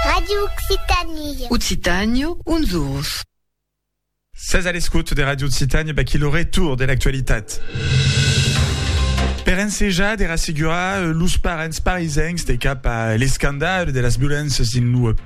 Radio Occitanie. Occitània, uns orus. Sètz a l'escòt de Radio Occitània, baquí lo retour de l'actualitat. Per ensejar de rassegurar los parents parisencs de cap a l'escandal de las violéncias dins lo periscòp,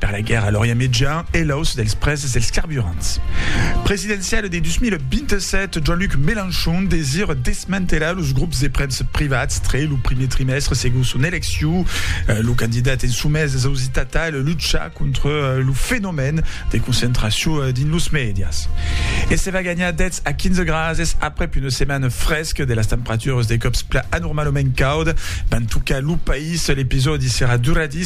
Per la guèrra a l'Orient Mejan e l'auç dels prèses dels carburants presidenciale de 2027, Jean-Luc Mélenchon desire desmantelar los grops de premsa privats tre lo primier trimèstre segon son elecciu. Lo candidat en somés es ausitat tal luchar contra lo fenomèn de concentracion dins los mèdias. E se va ganhar 10 a 15 grases aprèp una setmana fresca de las temperaturas de còps plan anormalament cauda van tocar lo país. L'episòdi serà duradís.